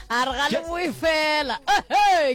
a re ga le boe fela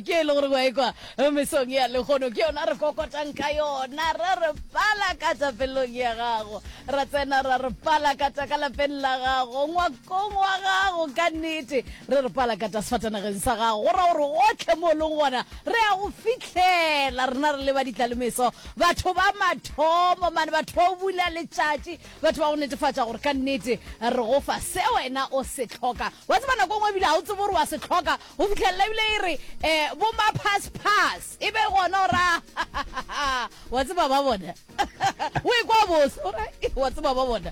ke e le gore wa ekwa mesong ya legono ke yona re kokotang ka yona ra re pala ka tsa pelong ya gago ra tsena ra re pala ka tsa ka lapeng la gago ngwakong wa gago ka nnete re re pala ka tsa sefatanageng sa gago go ra gore gotlhe mo e leng gona re ya go fitlhela rena re leba ditlalemeso Batho ba mathomo, mane batho ba go bula letšatši, batho ba go netefatša gore ka nnete re go fa se wena o se hloka. Wa tseba nako ngwe ebile ga o tsebe gore wa se hloka go fitlhelela ebile e re um bo ma pass pass e be gona o ra wa tseba ba bona o e kwa bose o ra wa tseba ba bona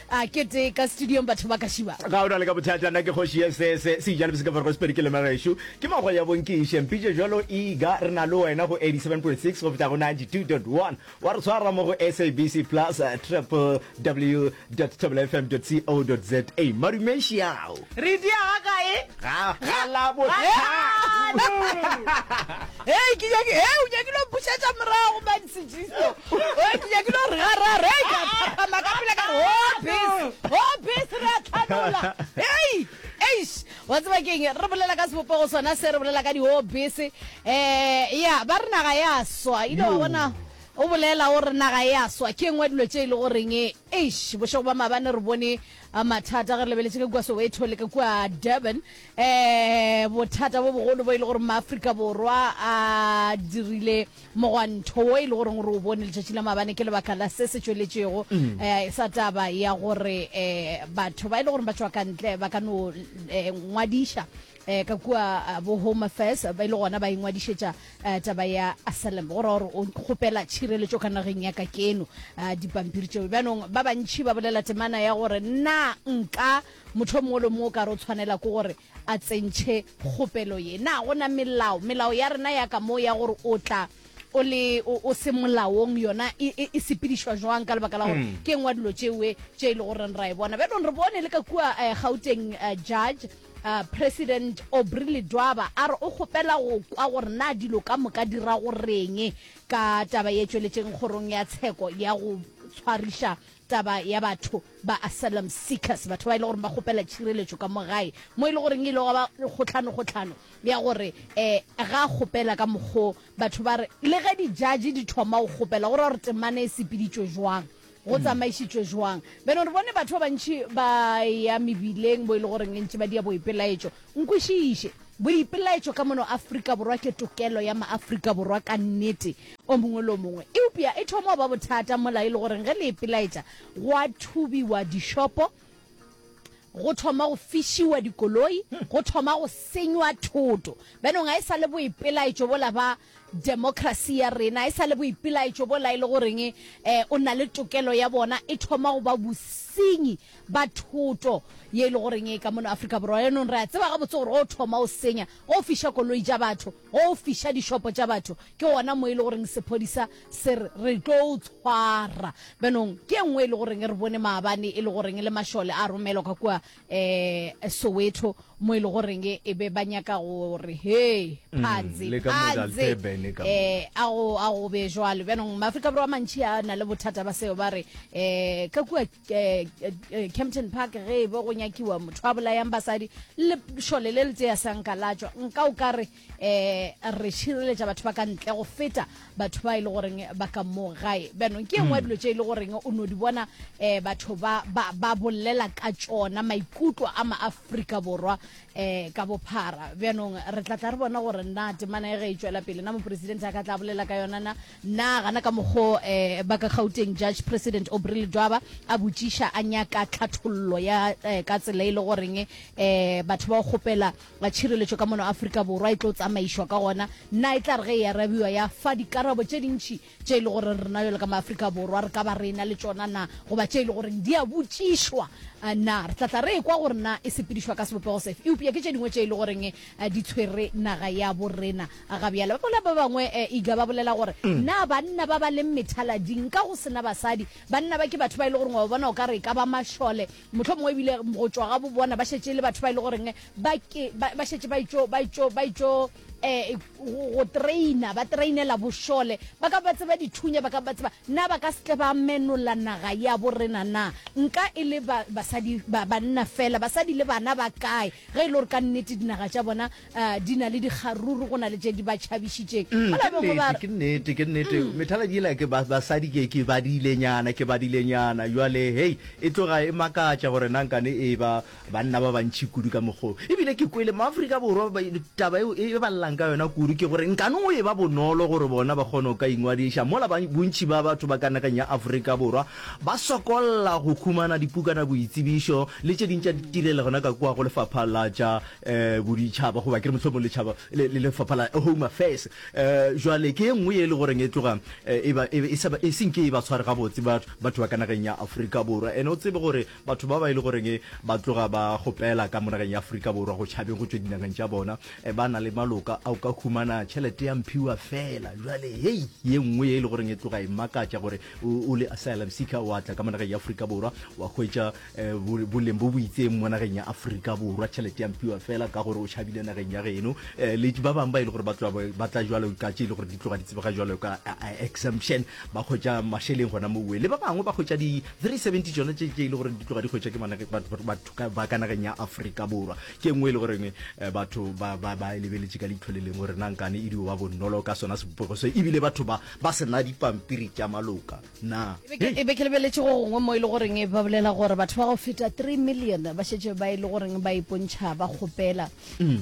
A kete ka studiong batho ba ka šiba. Ga o na le ka bothata, nna ke kgoši ye se se se ijale boseka fargo sepedi ke lema gešo ke mago ya bonkiše mpitše jalo e ga re na le wena go 87.6 go feta go 92.1 wa re tshwara mo go SABC plus www.thobelafm.co.za madume xiao Re di aga kae? Ga, ga Labohlano. Hei, ke nyaki, hei, o nyakile go bušetša morago, man, sejisto. Hei, ke nyakile gore ga ra, re, ka phaphama ka pele ka re, ho oh, bese, ho oh, bese, re a tlhanola. Hei, eish, wa tseba keng, re bolela ka sebopego sona se, re bolela ka di ho oh, bese. Eh, ya, ba re naga ya swa, ile wa bona, o bolela o re naga ya swa, ke engwe dilo tše e le goreng Eish bošego ba maabane re bone mathata ge re lebeletše ka kua Soweto le ka kua Durban um bothata bo bogolo bo e le gore maAfrika Borwa a dirile mogwanto wo e le goreng re o bone letšatši la maabane ke lebaka la se se tšweletšego um sa taba ya gore um batho ba e le gore ba tšwa kantle ba ka no um ngwadiša eh, ka kua eh, bo home affairs ba ile gona ba ingwadišetša eh, taba ya asalem go ra gore o kgopela tšhireletšo ka nageng ya ka keno eh, dipampiri tšeo bjanong ba bantšhi ba bolela temana ya gore na nka motho mongwe le mongwe o ka re o tshwanela ke gore a tsentšhe kgopelo ye na go na melao melao ya rena ya ka moo ya gore o tla o le o o se molaong yona e- e e sepedišwa jwang ka lebaka la gore Mm. ke ngwa dilo tšewe tše e le goreng ra e bona bjanong re bone le ka kua eh, gauteng eh, judge Uh, president obry ledwaba a re o kgopela go kwa gore na dilo ka moka di ra go reng ka taba ye tšweletšeng kgorong ya tsheko ya go tshwariša taba ya batho ba asylum seekers batho ba e le gore ba kgopela tšhireletšo ka mo gae mo e le goreng e ile ga ba kgotlhano kgotlhano ya gore um ga kgopela ka mokgo batho ba re le ge dijaji di thoma go kgopela gore gore temana e sepeditšwe jwang go tsamaišitšwe jwang beno re bone batho ba bantši ba ya mebileng bo e le goreng e ntše ba dia boipelaetšo nkwešiše boipelaetšo ka mono afrika borwa ke tokelo ya maaafrika borwa ka nnete o mongwe le o mongwe eupša e thoma ba bothata mola e le goreng ge le ipelaetša go a thubiwa dishopo go thoma go fišiwa dikoloi go thoma go senywa thoto benong a e sa le boipelaetšo bola ba Democracy ya rena e sa le boipelaetšo bo laele goreng e o na le tokelo ya bona e thoma go ba bosenyi ba thoto ye e le goreng e ka mono Afrika Borwa. Yanong re a tseba gabotse gore go thoma o senya, go fiša koloi tša batho, go fiša dišopo tša batho ke gona mo e le goreng sephodisa se re re tlo o tshwara. Bjanong ke e nngwe e le goreng re bone maabane e le goreng le mašole a romelwa ka kua eh Soweto mo ile e go reng e be ba nyaka gore hey mm, phanze phanze eh a go a go be jwalo bana ma Afrika borwa mantshi a na le bothata ba seo ba re eh ka kwa eh, eh, Kempton Park ge e be go nyakiwa motho a bolayang basadi le shole le le tse ya sanka la tswa nka o ka re eh re šireletša batho ba ka ntle go feta batho ba e le goreng ba ka mo gae bjanong ke engwe ya hmm. dilo tše e le goreng o no di bona um batho ba bolela ka tšona maikutlo a maaforika borwa um ka bophara bjanong re tla tla re bona gore na temana e ge e tšwela pele na moporesidente a ka tla bolela ka yona na na gana ka mokgo um ba ka gauteng judge president obrele dwaba a botšiša a nyaka tlhathollo ya ka tsela e le goreng um batho ba go kgopela ga tšhireletšo ka mono Afrika Borwa e tlo tsamaišwa ka gona, na e tla re ge e arabiwa ya fa dikarabo tše dintši tše e le gore rena bjalo ka maAfrika Borwa re ka ba re ena le tšona na, goba tše e le goreng di a botšišwa na? Re tla tla re ekwa gore na e sepedišwa ka sebopego sefe, eupša ke tše dingwe tše e le goreng di tshwere naga ya bo rena ga bjale. Ba bolela ba bangwe, Iga, ba bolela gore na banna ba ba leng methalading ka go se na basadi, banna ba ke batho ba e le goreng wa ba bona o ka re e ka ba mašole, Mohlomongwe e bile go tšwa ga bo bona ba šetše e le batho ba e le goreng eh, ba ke- ba ba šetše ba itšo ba itšo ba itšo eh, go go traina ba trainela bošole ba ka ba tseba dithunya ba ka ba tseba na ba ka se tle ba menola naga ya bo rena na nka e le ba- basadi ba- banna fela basadi le bana ba kae ge e le gore ka nnete dinaga tša bona A di na le dikgaruru go na le tše di ba tšhabišitšeng? Mm, Mola ke bangwe ba nnete, re, ke nnete, ke nnete. Mm. Methaladi yela ke ba- basadi ke ke badilenyana, ke badilenyana. Jwale hei, e tloga e makatša gore na nkane e ba banna ba bantši kudu ka mokgwa o. Ebile ke kwele maAfrika Borwa ba e- taba eo e e ba llelang ka yona kudu ke gore nkane go e ba bonolo gore bona ba kgone go ka ingwadiša mola ba- bontši ba batho ba ka nageng ya Afrika Borwa ba sokolla go humana dipukana boitsebišo le tše ding tša ditirelo gona ka kua go lefapha la tša um boditšhaba goba ke re mohlomong letšhaba le lefapha la home affairs um jwale ke e nngwe e le goreng e tloga eh, e, e, e, e senke e ba tshware gabotse batho ba ka nageng ya aforika borwa ene o tsebe gore batho ba ba e le goreng e ba tloga ba gopela ka mo nageng ya aforika borwa go tšhabeng go tswe dinageng tša bona eh, ba na le maloka a o ka humana tšhelete ya mphiwa fela jwale hei ye nngwe e le goreng e tloga e makatša gore o le asylum seeker wa tla ka mo nageng ya aforika borwa wa hwetša eh, boleng bo bo itseng mo nageng ya aforika borwa tšhelete ya mpiwa fela ka gore o tšhabile nageng ya geno eh, le ba bangwe ba e le gore ba tla jalo ka tse e le gore di tloga di tsebega jalo ka eh, exemption ba kgwetsa mašeleng gona mo uwe le ba bangwe ba kgwetsa di 370 tsone tse e le gore di tloga di kgwetsa ke batho ba ka nageng ya aforika borwa ke nngwe e le goreng batho ba e lebeletse ka leitlho le leng gore nankane e dio ba bonolo ka sona sebopego se ebile batho ba ba sena dipampiri tša maloka Na. E be ke lebeletše go gongwe mo e le goreng ba bolela gore batho ba go feta 3 million ba šetše ba e le goreng ba ipontšha ba kgopela um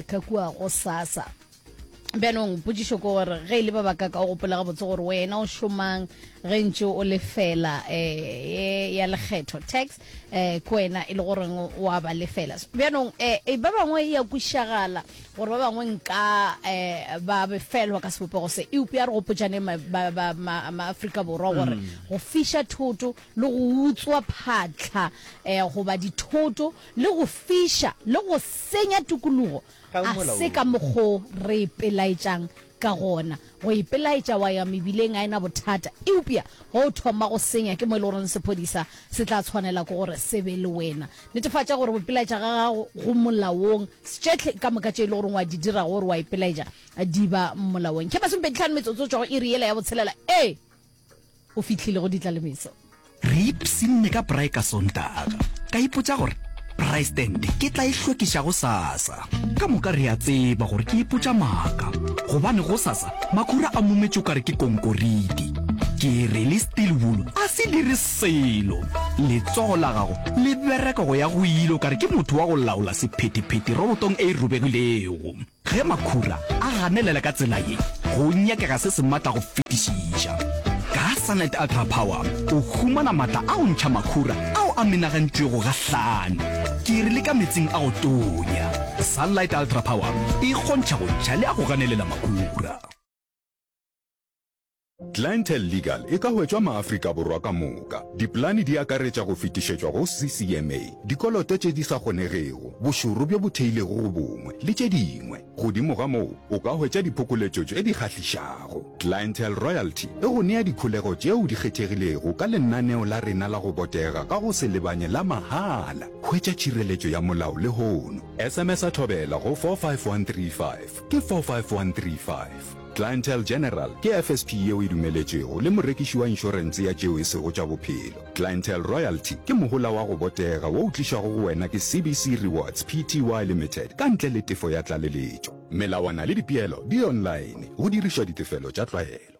ka kua go sasa bjanong potsišo ko gore ge e le ba baka ka o gopola gabotse gore wena o šomang ge ntse o lefela um ya lekgetho tax eh ko wena e le goreng o a ba lefela bjanong eh, eh ba bangwe e ya kwišagala gore ba bangwe nka eh ba befelwa ka sebopego se eupe ya re gopotšane maaforika borwa gore mm. go fiša thoto le go utswa phatlha eh goba dithoto le go fiša le go senya tokologo a se ka mokgo re pelaetšang Ka gona, go ipelaetša wa ya mebileng ga e na bothata, eupša ge o thoma go senya ke mo e le gore sephodisa se tla tshwanela ke gore se be le wena. Netefatša gore go ipelaetša ga gago go molaong, stšehle ka moka tše e le gore wa di dira ge o re wa ipelaetša di ba molaong. Khemaseng pedi tlhano metsotso go tšwa go iri yela ya botshelela. Ee! O fihlile go ditlalemetso. Re ipshinne ka braai ka Sontaga. Ka ipotša gore braai stand ke tla e hlwekiša gosasa. Ka moka re a tseba gore ke ipotša maaka gobane gosasa makhura a mumetše o ka re ke konkoriti. Ke re le steel wool a se dire selo. Letsogo la gago le bereka go ya go ile o ka re ke motho wa go laola sephetephete robotong e robegilego. Ge makhura a ganelela ka tsela ye, go nyakega se se matla go fetišiša. Ka Sunlight Ultra Power o humana matla a go ntšha makhura ao a menagantšwego gahlano ke re le ka metsing a go tonya. Sunlight Ultra Power e kgontšha go ntšha le a go ganelela makhura. Clientele Legal e ka hwetšwa Maafrika Borwa ka moka. Dipolane di akaretša go fetišetšwa go CCMA, dikoloto tše di sa kgonegego, bošoro bjo bo theilego go bongwe, le tše dingwe. Godimo ga moo, o ka hwetša diphokoletšo tše di kgahlišago. Clientele Royalty e go nea dikholego tšeo di kgethegilego ka lenaneo la rena la go botega ka go se lebanye la mahala. Hwetša tšhireletšo ya molao lehono. SMS-a Thobela go 45135, ke 45135. Clientele General ke FSP yeo e dumeletšwego le morekiši wa inšorense ya tšeo e sego tša bophelo. Clientele Royalty ke mohola wa go botega wo o tlišwago go wena ke CBC Rewards Pty Limited ka ntle le tefo ya tlaleletšo. Melawana le dipeelo di online go dirišwa ditefelo tša tlwaelo.